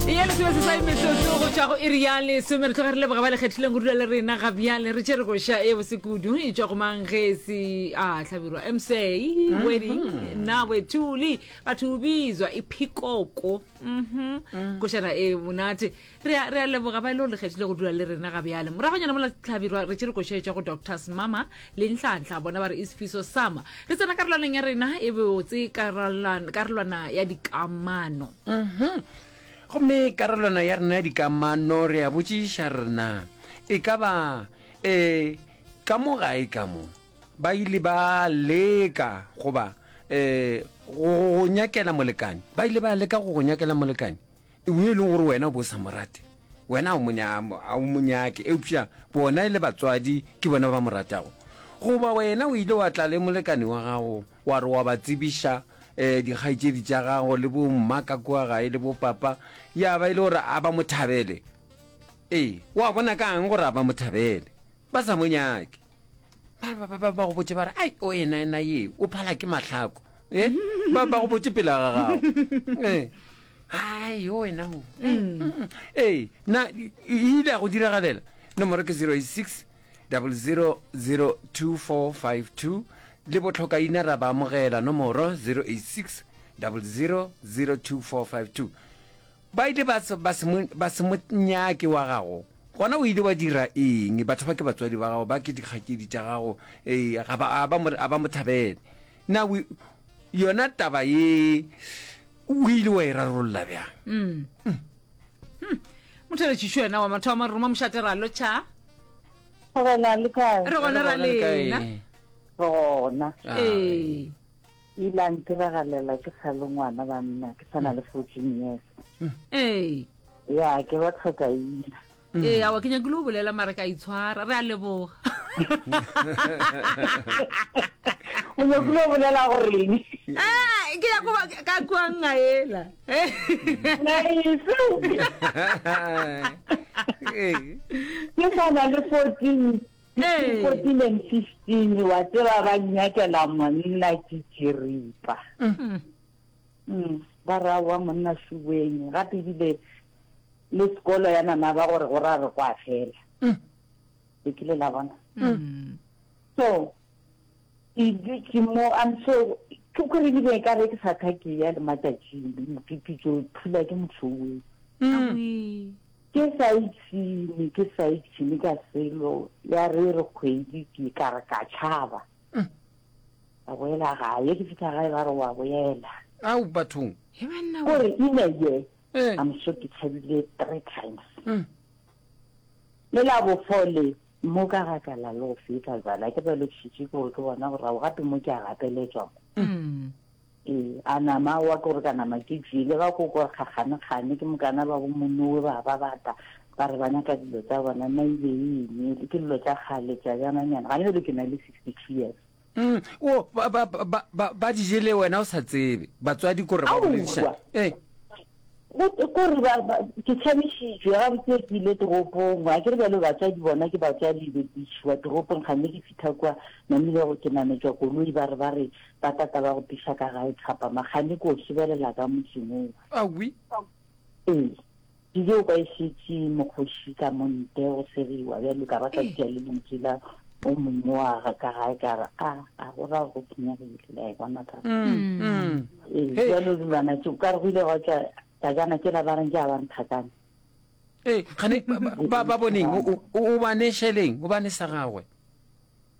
ye lesome sesai metsotso go tšwa go iri ya lesome re tloga re leboga ba le kgethileng go dula le rena ga bjale re tšere koša e bose kudu e tšwa go mang ge e se a hlabirwa msa mhm. wedding nna wetuli batho o bizwa e phikoko mhm. mm. košana e monate re a leboga ba e le go le kgethile go dula le rena ga bjale moragonyana mola tlhabirwa re tšere koša e tšwa go doctors mama Le Nhlanhla bona ba re e sefiso sama. Re tsena karolwaneng ya rena e botse, karolwana, karolwana ya dikamano. Mhm. Gomme karolwana ya rena ya dikamano re a botšiša rena e ka ba e ka mo gae ka mo ba ile ba leka goba e go go nyakela molekane. Ba ile ba leka go go nyakela molekane. Yo e lego gore wena o be o sa mo rate, wena ga o mo nya-, ga o mo nyake, eupša bona e le batswadi ke bona ba ba mo ratago. Goba wena o ile wa tla le molekane wa gago wa re wa ba tsebiša um dikgaetšedi tša gago le bo-mma ka kua gae le bo-papa, ya ba e le gore a ba mo thabele. Ee, wa bona ka'ng gore a ba mo thabele? Ba sa mo nyake. ba go botse ba re ai o ena ena ye o phala ke matlhako e ba go botse pela ga gago e ai o wena o ee na e ile ya go diragalela nomoro ke 086 000242 le botlhokaina ra ba amogela nomoro 086 000242 Ba ile ba se, ba se mo, ba se mo nyake wa gago. Gona o ile wa dira eng? Batho ba ke batswadi ba gago, ba ke dikgakedi tša gago, ee, ga ba, a ba mo, a ba mo thabele. Na o, yona taba ye, o ile wa e rarolla bjang? Mm. Mm. Mm. Motheletšiši wena wa mathomo, re roma mošate ra lo tšha. Re gona le kae? Re gona ra lena. Re gona. Ee. E ile a ntiragalela ke sa le ngwana banna, ke sa na le fourteen years. ee Ya, ke ba tlhoka ina. ee awa ke nyakile go bolela mara ka itshwara re a leboga O nyakile go bolela goreng? Ah, ke ya koba ka kwang a ela Nice. Ee. Ke sa na le fourteen 2015 wa tseba ba nyakela monna ke tširipa mm, ba ra wa monna suweng gape ebile le sekolo ya nana ba gore go ra re kwa fela le kile la bona so ke dutse mo am so ke kore ebile e ka re ke sa tha ke ya le matšatšing mokipitso phula ke motlhoweng Ke sa ipshine, ke sa ipshine ka selo, ya re re kgwedi ke ka re ka tšhaba. Ka boela gae, ke fihla gae ba re wa boela. Au bathong. He banna we. Kore in a year, Eh. I'm sure ke tšhabile three times. Mm. Le la bofole, mo ka ga ka la lo feta jana, ke ba le tšhitše kore ke bona borago gape mo ke a gapeletswa mo. Ee, a nama wa ko re ka nama ke tšee, le ga ko kwa kgakganekgane ke mokana ba bo monowe ba ba bata ba re ba nyaka dilo tsa bona nna ile e emele ke dilo tša kgale tša jananyana gane bjale ke na le sixty two years Mm, o ba ba ba ba ba di jele wena o sa tsebe batswadi ko re ba bolediša Aowa. eh Go twe ko re ba, ba, ke tšhabišitšwe, gabotse ke ile toropong, ga ke re bjalo batswadi bona ke batswadi, be ke išwa toropong, kganne ke fitha kua, namile go ke nametšwa koloi, ba re ba re ba tata ba go tiša ka gae Thapama, kganne ke o šebelela ka motseng wo wa. Awi. Ee. Ke tšeo kwa e šetše mokgoši ka mo ntle go segiwa, bjalo ka ba ka tšea le lentswe la. o mongwe wa ga ka gae ka re a a go ra go senyegile la e bona ka ee jalo dilwana tse ka re go ile gwa tla tajana ke la ba reng ke a ba nthakana ee gane ba ba boneng o ba ne sheleng o ba ne sa gagwe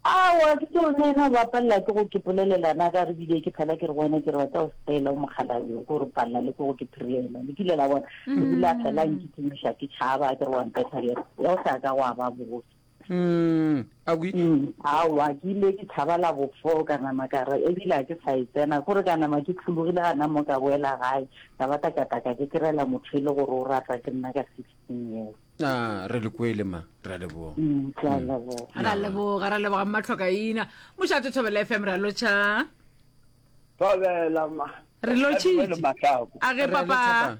awa ke tseo ne ena ba palela ke go ke polelelana ka re bile ke phela ke re wena ke re batla o sepela o mokgalayo ko re palela le ko go ke phirela le kile la bona ebile a fela nkitsemoša ke tšhaba ke re wa mpetha ya o sa ka wa ba botse Mm, awi. Mm, awa, ke ile ke thaba la bofo ka nama ka re ebile a ke sa e tsena kore ka nama ke tlhologile gana mo ka boela gae ka ba takataka ke kerela motho e le gore o ratwa ke nna ka sixteen years a re le kwele ma re a leboga Mm, ke a leboga ra leboga ra leboga mmatlhokaina mošate thobela fm ra lotšha Thobela ma. re lotšhitše a ge Re papa lotšha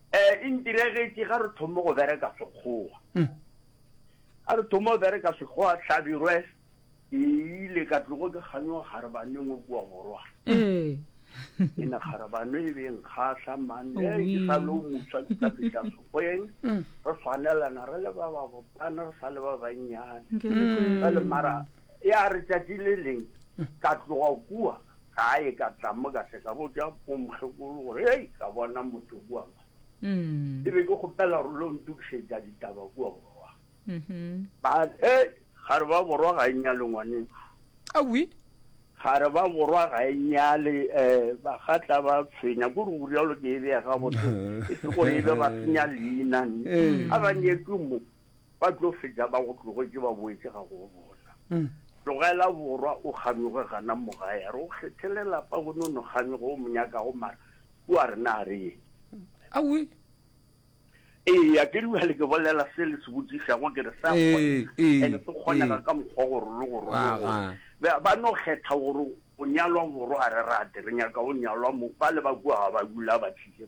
Ee, e ntiregetše ga re thome go bereka Sekgowa. Ga re thome go bereka Sekgowa, Hlabirwe e ile ka tlogo ke kganyoga Kgarebaneng o kua borwa. E ne Kgarebano e be e nkgahla, man, e ke sa le o mofsa ke tla fihla Sekgweng, re swanelana re le ba babotana, re sa le ba bannyane. Jwale mara ya re tšatši le leng ka tloga kua, Gae ka tla mo ka se ka botša bomokgekolo gore hei ka bona motho kua ma. Ke be ke kgopela gore lo ntokišetša ditaba kua borwa. Ba hei ga re ba borwa ga e nyale ngwaneku. Awi. Ga re ba borwa ga e nyale um ba gatla ba tshwenya ko re burialo ke e bea gabotse e se gore e be ba senya leina a ba nyetswe mo. Ba tlo fetša ba go tlogetše ba boetše ga go bona. Tlogela borwa o kganyoge gana mo gae. A re o kgethele lapa gone o no kganyoge o mo nyakago mara o a re na a re eng. Awi. Eya ke dula le ke bolela se le se botšišago ke re sa kgona ene se kgonega ka mokgwa gore le go rona ba no kgetha gore o nyalwa borwa a re rate re nyaka o nyalwa mo ba le ba kua ga ba dula ba tšhile